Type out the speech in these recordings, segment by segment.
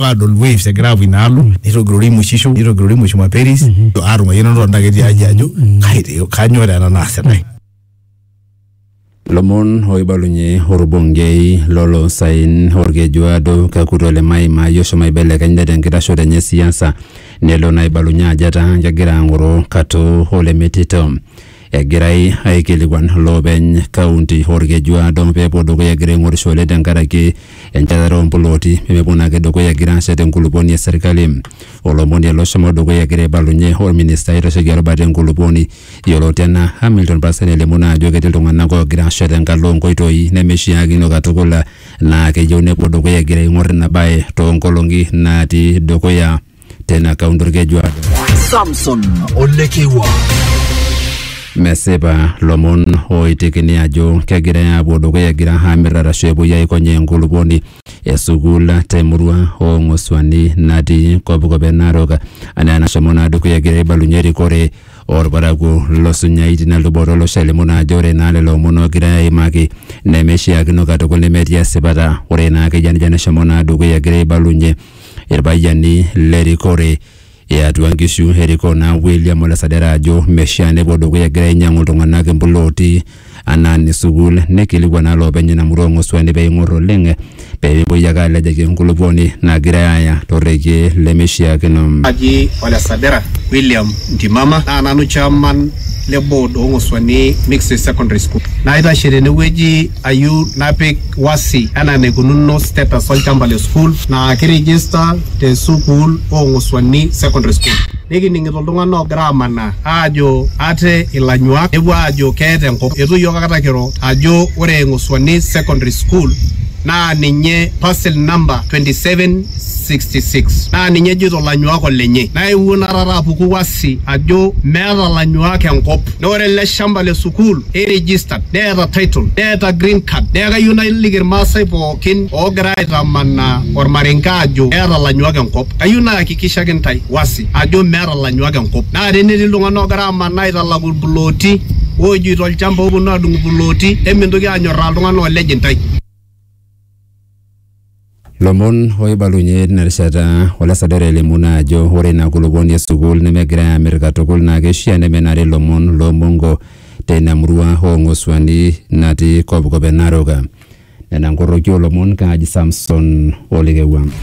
adol waves egira aapuo inaalo nitogirori imushisho nitogirori mushuma peris aatung'ayiana tonta ketii aji ajo kai te- kanyoo taa ena naasitae lomon oibalunye orbungei lolosaen orkejuado kakuto le maima yoshomo aibelekenya tenkitashoto enye siasa nelo naibalunye ajo etaa kegira ang'oro kato olemetito Egirai aikilikuan loopeny kaunti Olkeju Aado pee epuo dukuya egira aing'orishore tenkaraki enchetare oo mplooti pee mepuo naake dukuya egira aashet enkulupuoni e serkali. Olomoni ele oshomo dukuya egira aibalunye olministai oitasheki erubata e nkulupuoni yioloti anaa Hamilton Parsen elimu naa ajo ketii iltung'anak oogira aashet tenkalo oo nkoitoi nemeishiakino katukul naa keyieu nepuo dukuya egira aing'or ina bae too nkolong'i natii dukuya. tena kaunti orkejuado Samson Olekewa. mesipa lomon oitekini ajo kegirai aapuo dukuya egira aamir arashu epuoi aikonyaa enkulupuoni esukuul temurua oong'osuani natii kopikop e narok anaa enashomo naa dukuya egira aibalunye erikore orparakuo losunyai tina luboto olosho alimu naa ajo ore naa lelo omon ogirai aimaki nemeishiakino katukul nemetii esipata ore naa akeyia nejia neshomo naa dukuya egira aibalunye irpayiani le rikore e atua nkishu erikoo naa William Ole Sadera ajo meshaa nepuo dukuya egira ainyang'u iltung'anak impulooti anaa ne sukuul neikilikuan naa loopeny ina murua oo Ng'osuani peing'or oleng pee mepuoi ake alejaki enkulupuoni nagirae aaya to rrekie lemeishiakino. Naji Ole Sadera William Ntimama naa nanu chairman le board oo Ng'osuani Mixed Secondary School. Naitashe tenewueji ayieu napik wasi anaa enaikununo status olchamba le sukuul naa kirigista te sukuul oo Ng'osuani Secondary School. Nikining'ito iltung'ana oogira amanaa aajo ate ilanyuak nepuo aajo keeta enkop. Eitu iyiook akata kiro ajo ore Ng'osuani Secondary School naa ninye parcel number 2766 naa ninye ejoito ilanyuak olenye. Naa eewuo naa taata apuku wasi ajo meeta ilanyuak enkop. Naa ore ele shamba le sukuul nei registered neeta title neeta green card neeku kayieu naliki irmaasai pookin oogira aitamanaa ormarenke ajo eeta ilanyuak enkop kayieu nayakikishaki intae wasi ajo meeta ilanyuak enkop naa tenetii iltung'anak oogira amanaa aitalaku irplooti oojoito olchamba ooponu adung irplooti emintoki anyorraa iltung'anak oolej intae. Lomon oibalunye tina rishata olasadore elimu naa ajo ore ina kulupuoni e sukuul nemegirai aamir katukul naa keishaa nemenare lomon loo mongo teina murua oo Ng'osuani natii kopkop e Narok. Nena nkoroki oo lomon kaaji Samson Olekewua.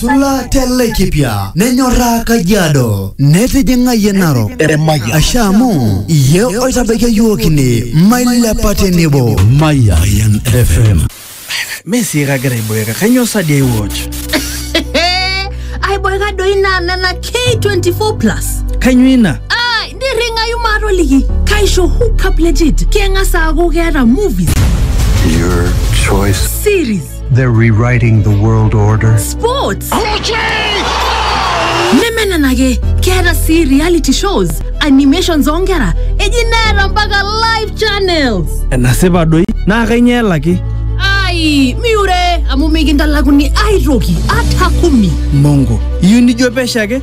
Sula telekipia nenyoraa Kajiado netijing'ayie Narok Eremaya. asha amu iye oitabaikia yiok ine mailepa tenebo Mayan FM. Messi kagira aiboeka kanyoo sadi ai watch aiboeka doi naa nena k24 plus kanyoo ina ai nirring'ayu maatoliki kaisho hookup legit keng'as aaku keeta movies Your choice. series They're rewriting the world order. Sports! nemenenake keeta sii reality shows animations oonkera eji neeta mpaka live channels enasipa doi naa kainyoo elaki ai miure amu mikintalakuni aitoki ata kumi mongo iyieu nijo pesho ake